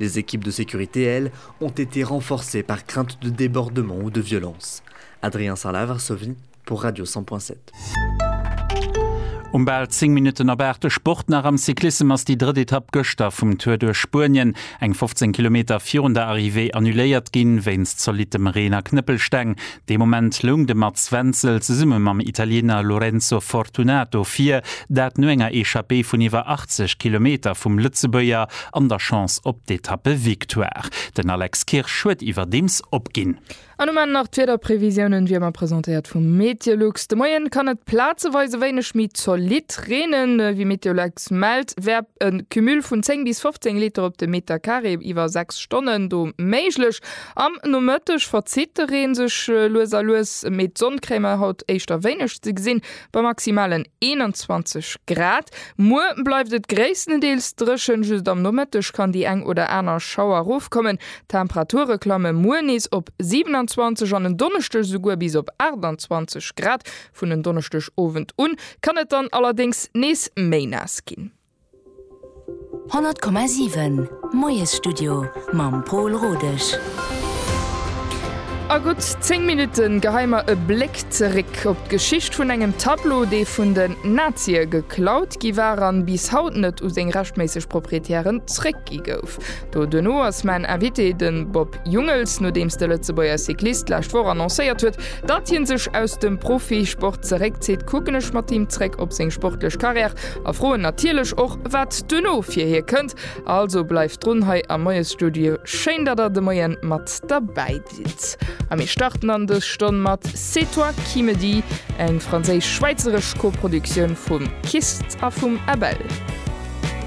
Les équipes de sécurité, elles, ont été renforcées par crainte de débordements ou de violences. Adrien Sala, Varsovie, pour Radio 100.7. Um bal 10 Minutten op 8 de Sport nach am Cyclissem ass déi drëtt Etapp gëschter vum Tour duerch Spuenien, eng 15 Kilometer virun der Arrivée, annuléiert ginn, wéinst zolittem Reen a Knëppelsteng. Dee Moment loung de Mats Wenzel zesumme mam Italiener Lorenzo Fortunato vir, dat no enger Echappée vun iwwer 80 Kilometer vum Lëtzebuerger an der Chance op d'Etappe-Victoire. Den Alex Kirsch huet iwwerdeems opginn. An um Enn nach d'Wiederprevisiounen, wéi ëmmer presentéiert vum Meteolux. De Moien kann et plazeweis e wéineg méi zolidd reenen. Wéi Meteolux mellt, wär e Cumul vun 10 bis 15 Liter op de Metercarré iwwer 6 Stonnen do méiglech. Am Nomëtteg verzitt de Reen sech lues a lues, mee d'Sonn kréie mer haut éischter wéineg ze gesinn, bei maximalen 21 Grad. Muer bleift et gréisstendeels dréchen, just am Nomëtteg kann déi eng oder aner Schauer erofkommen. D'Temperature klamme muer nees op 27 an en Donneschdeg souguer bis op 28 Grad. Vun en Donneschdeg Owend un kann et dann allerdéngs nees méi naass ginn. 100,7 Moiesstudio mam Pol Rodesch. A gutt 10 Minutte geheie mer e Bléck zeréck op d'Geschicht vun engem Tableau, dee vun den Nazie geklaut gi war an bis haut net u seng rechtméisseg Proprietären zréckgi gouf. Do duerno ass mäin Invité de Bob Jungels, nodeems de Lëtzebuerger Cyclist d'lescht Woch annoncéiert huet, datt hie sech aus dem Profisport zeréckzitt, kucken ech mat him zréck op seng sportlech Karriär a froen natierlech och, wat duerno fir hie kënnt. Also bleift drun hei am Moiesstudio. Schéin, datt der de Moie mat derbäi sidd a mir starten an dës Stonn mat C'est toi qui me dis, eng franséisch-schwäizeresch Co-Produktioun vum Kist a vum Ebel.